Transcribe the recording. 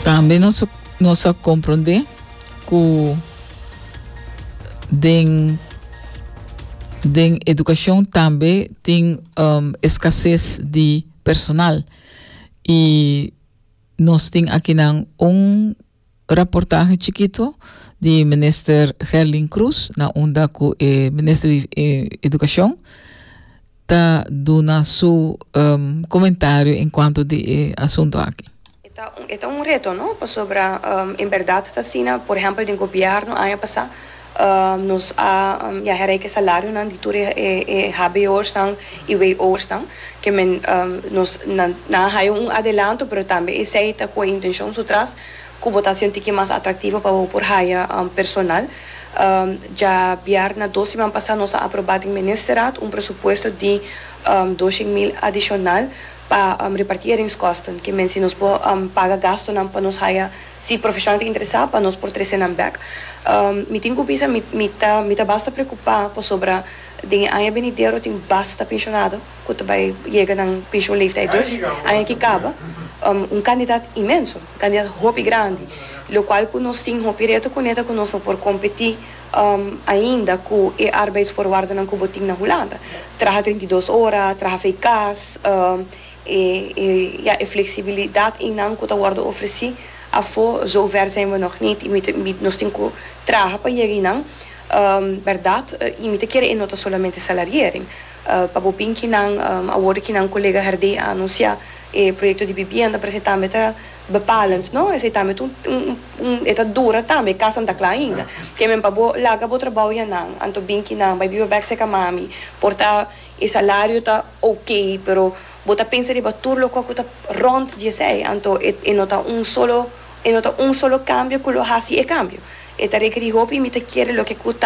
Tambe nos a, nos a comprende cu den, den educacion tambe tin um, escases di personal. Y nos tin akinan un. Raportahe chikito di Minister Gerlin Cruz na unda ku e Minister di Edukashon ta duna su komentario en kuanto di e asunto aki. E ta un reto no, pasobra en bèrdat ta asina, por ehèmpel den gobièrnu aña pasá, Nos a ya hera e salarionan di tur e HBO'ersnan i WO'ersnan, ke men nos nan a haya un adelanto, pero tambe esei ta ku e intenshon su tras ku bo ta hasi un tiki mas atraktivo pa bo por haya personal. Dja bièrnè dos siman pasá nos a aprobá den Ministerraad un presupuesto di doshen mil adishonal pa repartí eringskosten, ke men si nos por paga gastonan pa nos haya Si profesional ta interesá pa nos por trese nan bek, mi tin ku bisa mi mi ta mi ta basta preokupá pasobra den e aña benidero tin basta penshonado ku ta bai yega nan penshon leeftijd dus aña ki kaba, un kandidat inmenso, un kandidat hopi grandi, lokual ku nos tin hopi reto kuné ta ku nos no por kompetí ainda ku e arbeidsvoorwaardennan ku bo tin na Hulanda, traha treinta i dos ora, traha fei kas. ya, e flexibilidad eynan cu ta wordo ofreci afo zover zijn we nog niet y mi ta, mi, nos tin cu traha pa yega eynan, berdad, y mi ta kere ey no ta solamente salariering, pa bo bin ki nan, awor ki nan colega herdey a anuncia e proyecto di bibienda parece tambe ta bepalend, no, esey tambe ta un, e ta dura tambe, e casa no ta cla ainda, ke men pa bo laga bo trabao ya nan, anto bin ki nan, bay biba bek cerca mami, por ta E salario ta ok, pero bo ta pensa riba tur loke ku ta rònt di esei, anto e e no ta un solo e no ta un solo kambio ku lo hasi e kambio. E ta rekerí hopi, mi ta kere loke ku ta